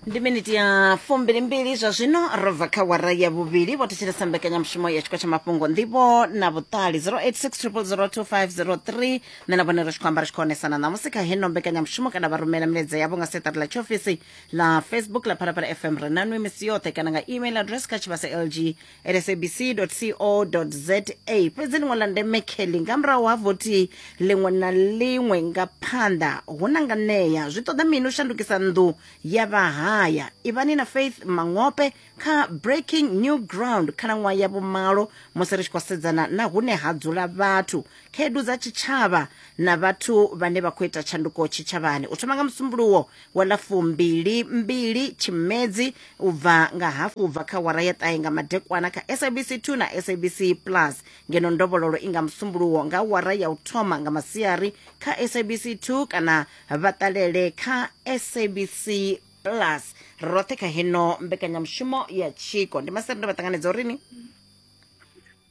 ndi miniti ya fumbilimbili zwa zwino ro bva kha wara ya vhuvhili vho thetshelesa mbekanyamushumo ya tshiko tsha mafhungo ndivho na vhuṱali 0860002503 nṋe na vhone ri tshi khou amba ri tshi khou onesana ṋamusi kha heno mbekanyamushumo kana vha rumela milaedza yavho nga seṱari ḽa tshiofisi ḽa facebook ḽa phalaphala fm ri nanwi misi yoṱhe kana nga email address kha tshivhase lg sabc.co.za fhedzi ḽiṅwe ḽa ndeme kelly nga murahu ha vothi ḽiṅwe na ḽiṅwe nga phanḓa hu na nga ṋea zwi ṱoḓa mini u shandukisa nnḓu ya vhahaya ivhani na faith mangope kha breaking new ground khalaṅwaha ya vhumalo musi ri tshi khou sedzana na hune ha dzula vhathu khaedu dza tshitshavha na vhathu vhane vha khou ita tshanduko tshitshavhani u thoma nga musumbuluwo wa ḽa fumbili mbili tshimedzi u bva nga hafu u bva kha wara ya ṱahe nga madekwana kha sabc 2 na sabc plus ngeno ndovhololo i nga musumbuluwo nga wara ya u thoma nga masiari kha sabc 2 kana vha ṱalele kha sabc plus roṱhe kha heno mbekanyamushumo ya tshiko ndi masere ndo vha ṱanganedza uri ni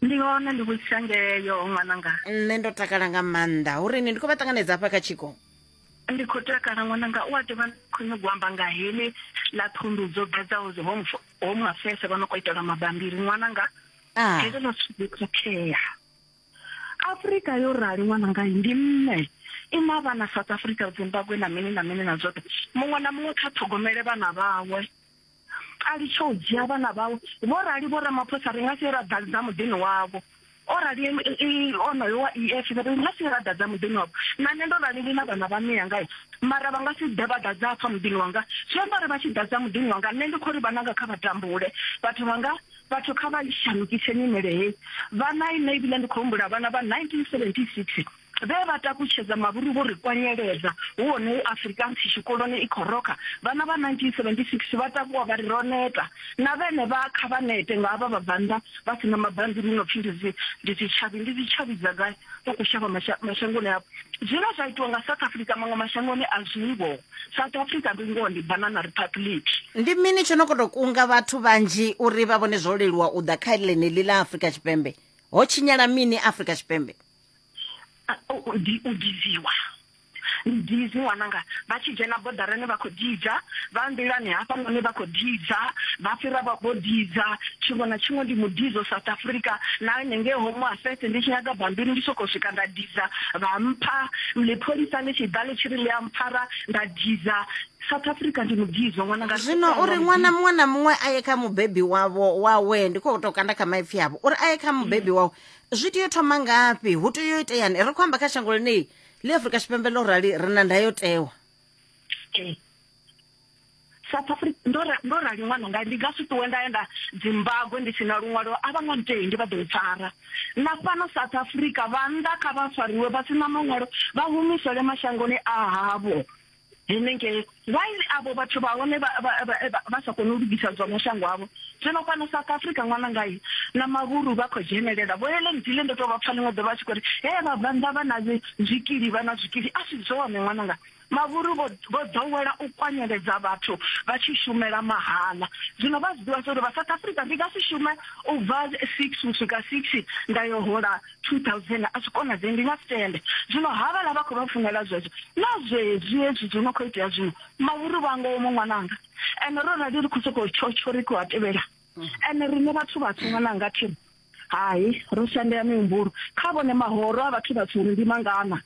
ndi hone ndi vhutshangeyo ṅwananga nṋe ndo takala nga maanḓa uri ni ndi khou vha ṱanganedza hafha kha tshiko ndi khou takala ṅwananga u a ḓi vha khou nyanga u amba nga heḽi ḽa thundu dzo ḓadzaho dzi home home affairs vha no khou itela mabambiri ṅwananga ah. heḽo ḽa thundu khakhea afrika yo rali ṅwananga ndi mme i na vhana south africa zimbabwe na mini na mini na zwoṱhe muṅwe na muṅwe kha ṱhogomele vhana vhawe a litshe u dzhia vhana vhawe vho rali vho ramaphosa ri nga si ra ḓadza muḓini wavho o rali onoyo wa ef ri nga si ra ḓadza muḓini wavho na nṋe ndo rali ndi na vhana vha miya ngae mara vha nga si ḓe vha ḓadza afha muḓini wanga zwi amba uri vha tshi ḓadza muḓini wanga nṋe ndi khou ri vhananga kha vha tambule vhathu vhanga vhathu kha vha shandukise nyimele heyi vhana ine ebile ndi khou humbula vhana vha 1976 Vhe vha takutshedza mavhuru vho ri kwanyeledza, hu hone he Afrikaans tshikoloni i khou rokha. Vhana vha 1976 vha takuwa vha ri, Ro neta! Na vhenevha kha vha nete nga havha vhabvannḓa vha si na mabambiri hu no pfi ndi dzi, ndi dzi tshavhi. Ndi dzi tshavhi dza gai? Vha khou shavha masha, mashangoni avho. Zwine zwa itiwa nga South Africa maṅwe mashangoni a zwi ho. South Africa ndi ngoho ndi Banana Republic. Ndi mini tsho no khou tou kunga vhathu vhanzhi uri vha vhone zwo leluwa u ḓa kha ḽeneḽi ḽa Afrika Tshipembe? Ho tshinyala mini Afrika Tshipembe? u diziwa ndizi ṅwananga vha tshi dzhena bodarani vha khou didza vha nḓilani hafhanoni vha khou didza vha fhira vha vho didza tshiṅwe na tshiṅwe ndi mudidzo south africa na nengei home affairs ndi tshi nyaga bambiri ndi sokou swika nda didza vha mpha ḽipholisa ḽi tshi ḓa ḽi tshi ri ḽi a mpfara nda didza south africa ndi mudidzo ṅwananga zwino uri ṅwana muṅwe na muṅwe a ye kha mubebi wavho wawe ndi khou tou kanda kha maipfhi avho uri a ye kha mubebi wawe zwi tea u thoma ngafhi hu tea u iteyani ri khou amba kha shango ḽenei ḽi afrika tshipembe ḽo rali ri na ndayotewa south africa ndo rali ṅwana nga ndi nga si ṱuwe nda ya nda zimbabwe ndi si na luṅwalo a vha nga ntei ndi vha ḓo mpfara na fhano south africa vhannḓa kha vha fariwe vha si na maṅwalo vha humisele mashangoni a havho henengei while avho vhathu vha hone vha sa kone u lugisa zwa mashango avho zwino fhano south africa ṅwana ngai na mavhuru vha khou dzhenelela vho hele ndile ndo tou vha pfa ḽiṅwe ḓovha tshi khou ri he vha bvannḓa vha na zwikili vha na zwikili a si zwone ṅwana nga mavhuru vho ḓowela u kwanyeledza vhathu vha tshi shumela mahala zwino vha zwi ḓivha zwa uri vha south africa ndi nga si shume u bva six u swika six nda yo hola 2000 a zwi konadzei ndi nga si tende zwino havhala vha khou vha funela zwezwo na zwezwi hezwi zwo no khou itea zwino mavhuru vha ngowo mu ṅwananga ende ro rali ri khou sokou tshotsho ri khou a tevhela ende riṋe vhathu vhatswu ṅwananga thiri hai ro shandea mihumbulo kha vhone mahoro a vhathu vhatswu uri ndi mangana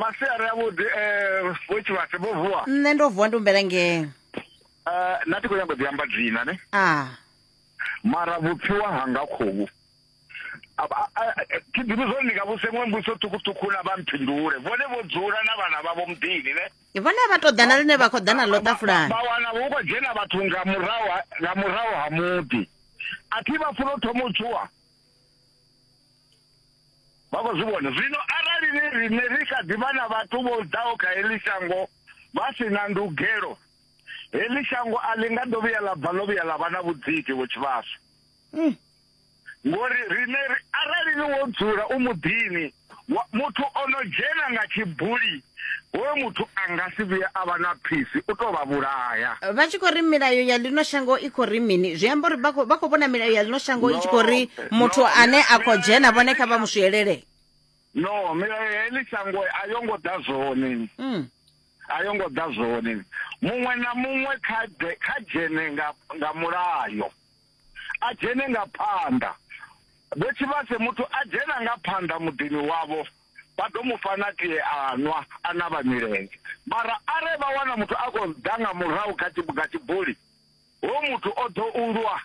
masiari avhuḓi um vho tshivhase vho vuwa nṋe ndo vuwa ndi humbela ngee um na ti khou nyanga u ḓi amba dzina ne a mara vhupfiwa hanga khovhu thi ḓivhi zwori ndi nga vhuse ṅwe mbuso ṱhukhuṱhukhu na vha mphindule vhone vho dzula na vhana vhavho muḓini ne vhone vha tou ḓana ḽine vha khou ḓana ḽo ṱafulani vha wana hu khou dzhena vhathu nga murahu nga murahu ha muḓi a thi vha funa u thoma u tshuwa vha khou zwi vhona zwino arali ni riṋe ri kha ḓi vha na vhathu vho ḓaho kha heḽi shango vha si na ndugelo heḽi shango a ḽi nga ḓo vhuya ḽa bva ḽo vhuya ḽa vha na vhudziki vho tshivhasa mm. ngori riṋe arali ni wo dzula u muḓini Wa, muthu o no dzhena nga tshibuli hoyo muthu a nga si vhuye a vha na phisi u tou vha vhulaya vha tshi khou ri milayo ya ḽino shango i khou ri mini zwi amba uri vha khou- vha khou vhona milayo ya ḽino shango i tshi khou ri No, muthu no, ane a khou milayo- dzhena vhone kha vha mu swielee no milayo ya heḽi shango a yo ngo ḓa zwone Mm. a yo ngo ḓa zwone muṅwe na muṅwe kha ḓe- kha dzhene nga nga mulayo a dzhene nga phanḓa. Vho Tshivhase muthu a dzhena nga phanḓa muḓini wavho vha ḓo mu fha na tie a nwa a navha milenzhe. Mara are vha wana muthu a khou ḓa nga murahu kha tshi nga tshibuli ho muthu o ḓo u lwa.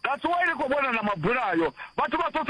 That's why ri khou vhona na mabulayo vhathu vha sosa